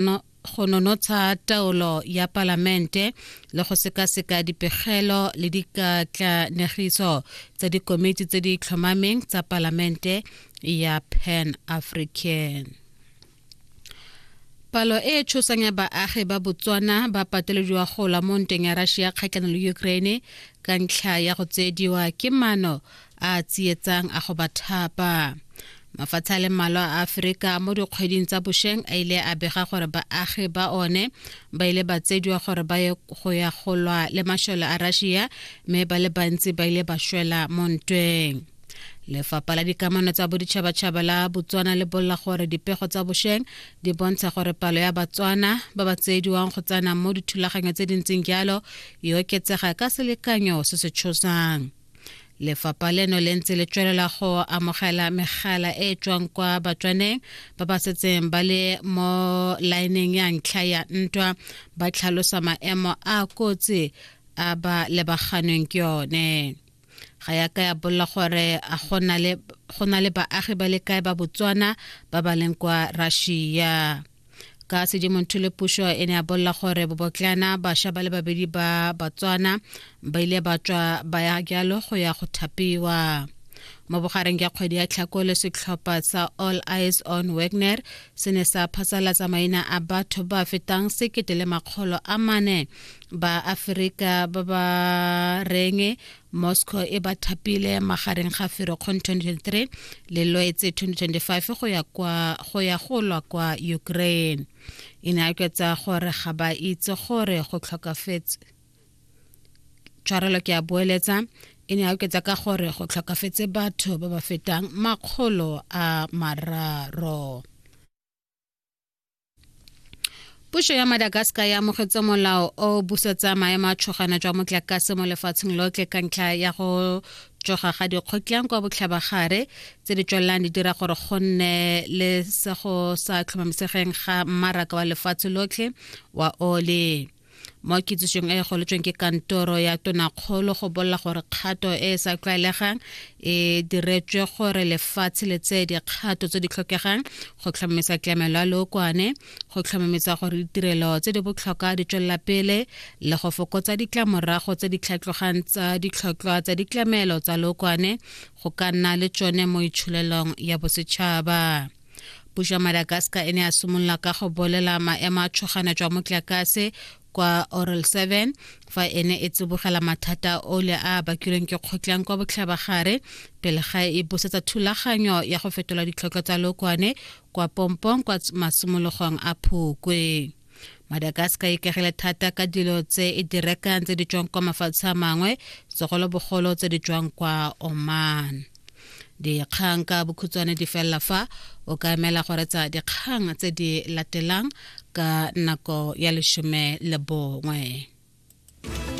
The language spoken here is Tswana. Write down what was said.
no, go nonotsha taolo ya palamente le go sekaseka dipegelo le dikatlanegiso tsa dikomiti tse di tlhomameng tsa palamente ya pan african palo e e tshosang ya baagi ba botswana ba patelediwa go la mo ntweng ya russia kgatlhanong le ukraine ka ntlha ya go tseediwa ke mano a a tsietsang a go ba thapa mafatshe a le mmalwa a aferika mo dikgweding tsa bošeng a ile a bega gore baagi ba one ba ile ba tsediwa gore ba ye go ya go lwa le mašole a russia mme ba le bantsi ba ile ba šwela mo ntweng lefapha la dikamano tsa boditšhabatšhaba la botswana le bolla gore dipego tsa bošeng di bontsha gore palo ya batswana ba ba tsediwang go tsena mo dithulaganyo tse di ntseng jalo e oketsega ka selekanyo se se tshosang Lefapha leno le ntse le tswelela go amogela megala e e tswang kwa batswaneng ba ba setseng ba le mo laeneng ya ntlha ya ntwa ba tlhalosa maemo a kotsi a ba lebaganweng ke yone ga ya ka ya bolla gore a go na le baagi ba le kae ba botswana ba ba leng kwa russia ka sedimontho le pušo e ne a bolela gore bobotlana bašwa ba le babedi ba batswana ba ile ba tswa ba ya jalo go ya go thapiwa mo bogareng ya kgwedi ya tlhakole setlhopha sa all eyes on wagner se ne sa phasalatsa maina a batho ba fetang sekete le makgolo a mane ba aferika ba ba reng moscow e ba thapile magareng ga ferokgong 2023 le loetse 2025 go ya kwa go ya go lwa kwa ukraine e ne a kwetsa gore ga ba itse gore go tlhokafetse tshwarelo ke a boeletsa e ne a oketsa ka gore go tlhokafetse batho ba ba fetang makgolo a mararo puso ya madagascar ya amogetse molao o busetsa maemo a tshogana jwa motlakase mo lefatsheng lotlhe ka ntlha ya go tsoga ga dikgotlang kwa botlhabagare tse di tswelelang di dira gore go nne le se go sa tlhomamisegeng ga mmaraka wa lefatshe lotlhe wa ole mo kitsisong e e goletsweng ke kantoro ya tonakgolo go bolela gore kgato e e sa tlwaelegang e diretswe gore lefatshe le tseye dikgato tse di tlhokegang go tlhomamisa tlamelo ya lookwane go tlhomamisa gore ditirelo tse di botlhokwa di tswelela pele le go fokotsa ditlamorago tse di tlhatlogang tsa ditlhotlhwa tsa ditlamelo tsa lookwane go ka nna le tsone mo itsholelong ya bosetšhaba puso ya madagascar e ne a simolola ka go bolela maemo a tshogana jwa motlakase kwa oral 7 fa e ne e tsibogela mathata ole a bakilweng ke kgotlang kwa botlhabagare pele ga e busetsa thulaganyo ya go fetola ditlhoko tsa lokwane kwa pompong kwa masimologong a phukwe madagascar e ikagile thata ka dilo tse e di rekang tse di tswang kwa mafatshe a mangwe segolobogolo tse di tswang kwa oman dikgang ka bokhutshwane di felela fa o ka emela go retsa dikgang tse di latelang ka nako ya lesome le bongwe